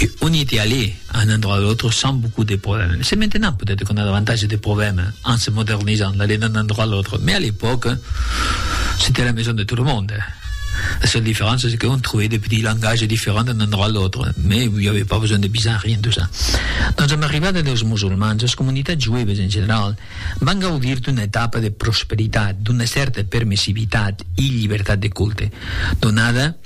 E on ete allé a un endroit a l'autre sans beaucoup de problèmes. C'est maintenant peut-être qu'on a davantage de problèmes en se modernisant, d'aller d'un endroit à l'autre, mais à l'époque, c'était la maison de tout le monde. La seule différence c'est qu'on trouvait des petits langages différents d'un endroit à l'autre, mais il n'y avait pas besoin de visas, rien de ça. Doncs amb l'arribada dels musulmans, las comunitats jueves en general van gaudir d'una etapa de prosperitat, d'una cèrta permissivitat e llibertat de culte, donada,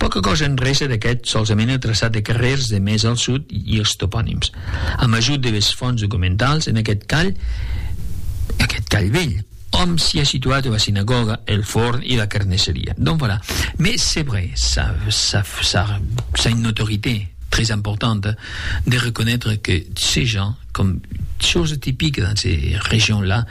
Pòca còsa en rese d'aqueth solsamene traçat de carrèrs de mès al sud i es toponims, amb ajut de les fònts documentals, en aquest call, aquest call velh, òm s'i a situat ua sinagòga, el forn i la carnesseria. Donc voilà. Mès c'est vrai, ça, ça, ça, ça une notorité très importante de reconnaître que ces gens, comme chose typique dans ces régions-là,